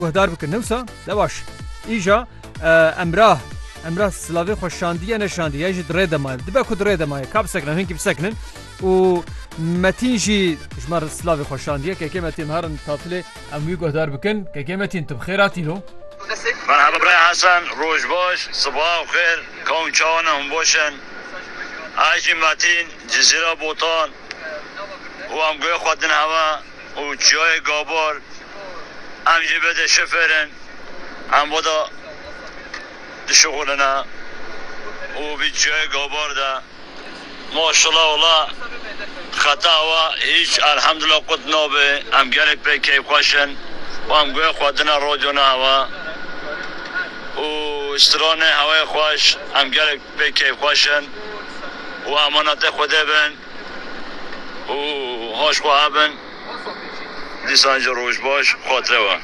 Guhdar bikin ne wisa? Ne baş. Îja Emrah Emrah silavê xwe şandiye ne şandiye ya jî di rê de maye. Dibe ku di rê de maye ka bisekinin hinkî bisekinin û Metin jî ji mar silavê xwe şandiye kekê Metin herin tatilê em wî guhdar bikin kekê Metin tu bi xêr hatîno. Merhaba Bray Hesen, roj baş, sibaha xêr, kawm çawa ne hûn baş in? Ez jî Metin, Cizîra Botan û em guhê xwe din hev e. û çiyayê Gabar em jî vê de şifêr in, em vê de dişixulîne û vî çiyayê Gabar de maşela wala xeta awa hîç elhemdullah qut nabe, em gelek pê keyfxweş in û em guhê xwe dine radyona hewa û stranê hewayê xweş, em gelek pê keyfxweş in û emanetê Xwedê bin. û haj xwe hebin dîsan jî roj baş xatirê we.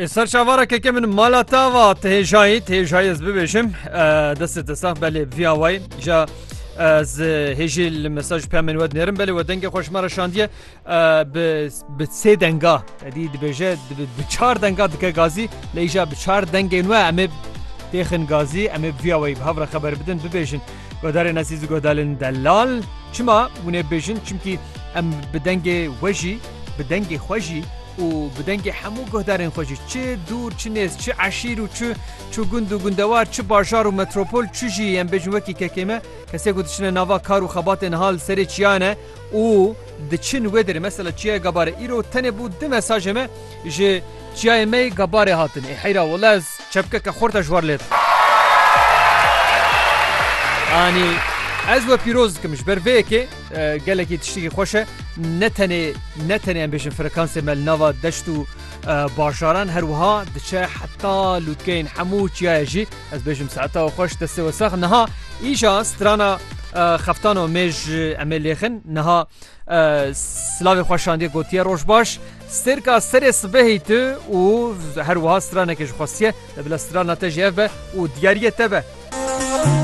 Ê ser çavara keke min mala te va ti hêjayî ti hêjayî ez bibêjim destê te sax belê vîya wayî ja ez hêjî li mesaj peyamên we dinêrim belê we dengê xweşmara şandiye Bi bi sê denga edî dibêje bi çar denga dike gazî lê îja bi çar dengên we em ê têxin gazî em ê viya weyî bi hev re xeber bidin bibêjin guhdarên ezîz û guhdarên delal çima hûn ê bêjin çimkî em bi dengê we jî bi dengê xwe jî û bi dengê hemû guhdarên xwe jî çi dûr çi nêz çi eşîr û çi çi gund û gundewar çi bajar û metropol çi jî em bêjin wekî kekê me kesê ku diçine nava kar û xebatên hal serê çiyan e û diçin wê derê mesela çiyayê Gabarê îro tenê bû du mesajê me ji çiyayê me yê Gabarê hatin ê heyra wele ez çepkeke xurta ji war lê dikim. Anî ez we pîroz dikim ji ber vê yekê gelekî tiştekî xweş e ne tenê ne tenê em bêjin frekansê me li nava deşt û bajaran her wiha diçe heta lûtkeyên hemû çiyayê jî Ez bêjim saeta xwe ji destê we sax niha îşa strana xeftano mê ji emê lêxin niha silavê xwe şandiye gotiye roj baş stêrka serê sibehî tu û her wiha stranekê ji xwestiye bila strana te ji ev be û diyariye te be.